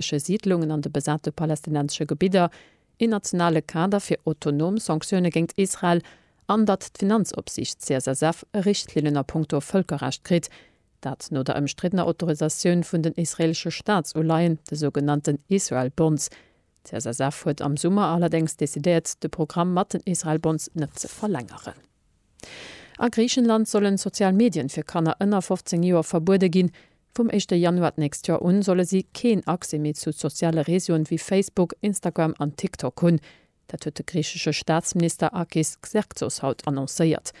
israeelesche Siidlungen an de besate palästinensesche Gebidder, een nationale Kader fir autonom Sanktioune géint Israel an datt d'Finanzopsiicht CSSF Richtlinnen a puncto Vëlkerrecht kritt, dat no der ëmstriddener Autorisatioun vun den israeelesche Staatsuleihen, de sougenannten Israel Bonds. D'CSSF huet am Summer allerdéngs decidéiert, de Programm mat den Israel Bonds net ze verlängeren. A Griichenland sollen sozial Medien fir Kanner ënner 15 Joer verbuede ginn. Vum éischte Januar d'nächst Joer un solle si keen Accès méi zu soziale Reseauen wéi Facebook, Instagram an TikTok hunn. Dat huet de griichesche Staatsminister Akis Xerxos haut annoncéiert.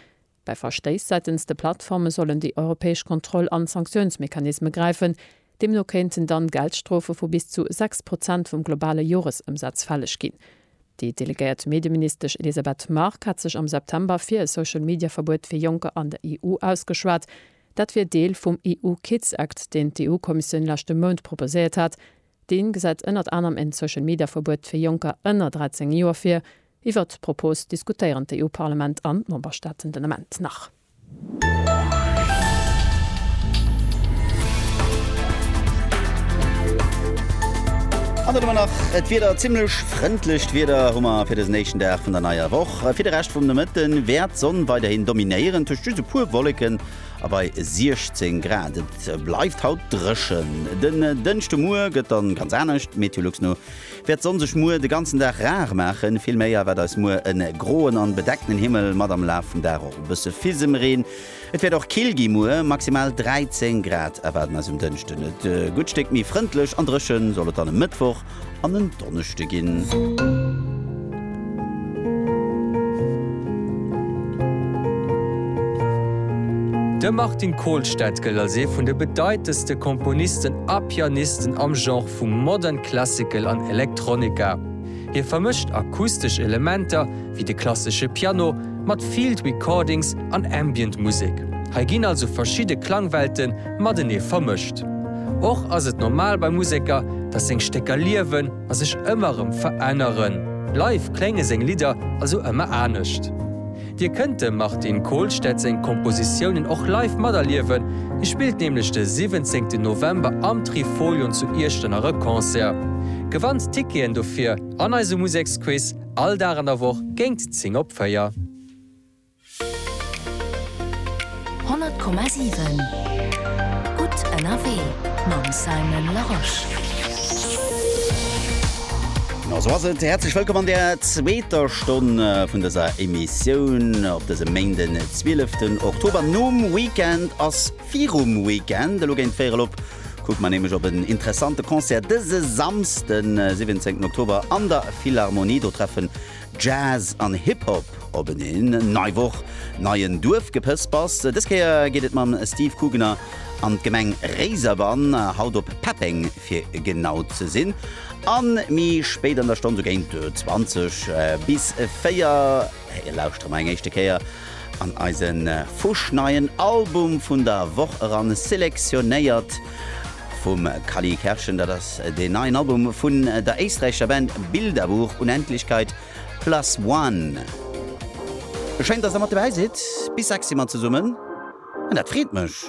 Bei Verstéiss säitens de Plattforme sollen déi europäesch Kontroll an Sanktiounsmechanisme gräifen. Deemno kéinten dann Geldstrofe vu bis zu 6 Prozent vum globale Joresëmsaz fälleg ginn. Déi delegéiert Medieministesch Elisabeth Margue hat sech am September fir e Social-Media-Verbuet fir Jonker an der EU ausgeschwat. Dat wier Deel vum EU-Kids Act, deen d'EU-Kommissioun leschte Mount proposéiert hat. Dee gesäit ënnert anerem en Social-Media-Verbuet fir Jonker ënner 13 Joer vir. Iwwert d'Propos diskutéieren d'EU-Parlament an d'Memberstaaten den Ament nach. An dann hu mer nach et Wieder, zimmlech frëndlecht Wieder hu mer fir dësen éischten Dag vun der neier Woch. Fir de Rescht vum Nomëtte wäert d'Sonn weiderhin dominéieren, tëscht just e puer Wolleken a bei 16 Grad. Et bleift haut dréchen. Den Dënschdemuer gëtt dann ganz anescht, Meteolux no. Wäert d'Sonn sech muer de ganzen Dag rar maachen, vill méi erwaart eis muer e groen an bedeckten Himmel mat am Laf vum Dag och e bësse Fisemreen. Et wäert och kill gi, muer maximal 13 Grad erwaarden eis um Dënschden. E gutt Stéck méi frëndlech an drëchen soll et dann e Mëttwoch an en Donneschde ginn. De Martin Kolstad gëllt als ee vun de bedeitendste Komponisten a Pianisten am Genre vu Modern Classical an Electronica. Hie vermëscht akustesch Elementer, wéi de klassesche Piano, mat Field Recordings an Ambient Musek. Hei ginn also verschidde Klangwelte matenee vermëscht. Och ass et normal bei Museker, datt seng Stécker liewen. a sech ëmmer erëm veränneren, bleiw klénge seng Lidder also ëmmer anescht. Dir kënnt dem Martin Kolstad seng Kompositiounen och live materliewen, hie spillt nämlech de 17 November am Trifolion zu Iechternach e Concert. Gewannt Ticketen dofir an eisem Museksquiz all Dag an der Woch géingt 10 op 4. 100,7 Gutt ënnerwee mam Simon Larosche. A sou ass et, häerzlech wëllkomm an der zweeter Stonn vun dëser Emissioun op dësem Méint den 12 ten Oktober. Nom Weekend ass virum Weekend, elo géint véierel op kucke mer nämlech op en interessante Concert dëse Samsden 17 Oktober an der Philharmonie. Do treffen Jazz an Hip Hop op en Een, nei Woch, neien Duerfgepëspers. Dës Kéier geet et mam Steve Kugener an d'Gemeng Réiserbann, haut op Peppeng fir genau ze sinn, an mi spéit an der Stonn, sou géint 20 bis 4, lauschtert mer eng éischte Kéier. An eise fuschneien Album vun der Woch eran, selektionéiert vum Kally Kerschen. Dat ass deen neien Album vun der éisträichescher Band Bilderbuch, Unendlichkeit plus one. Schéin, dass der mat dobäi sidd. Bis 6 si mer zesummen an dat freet mech.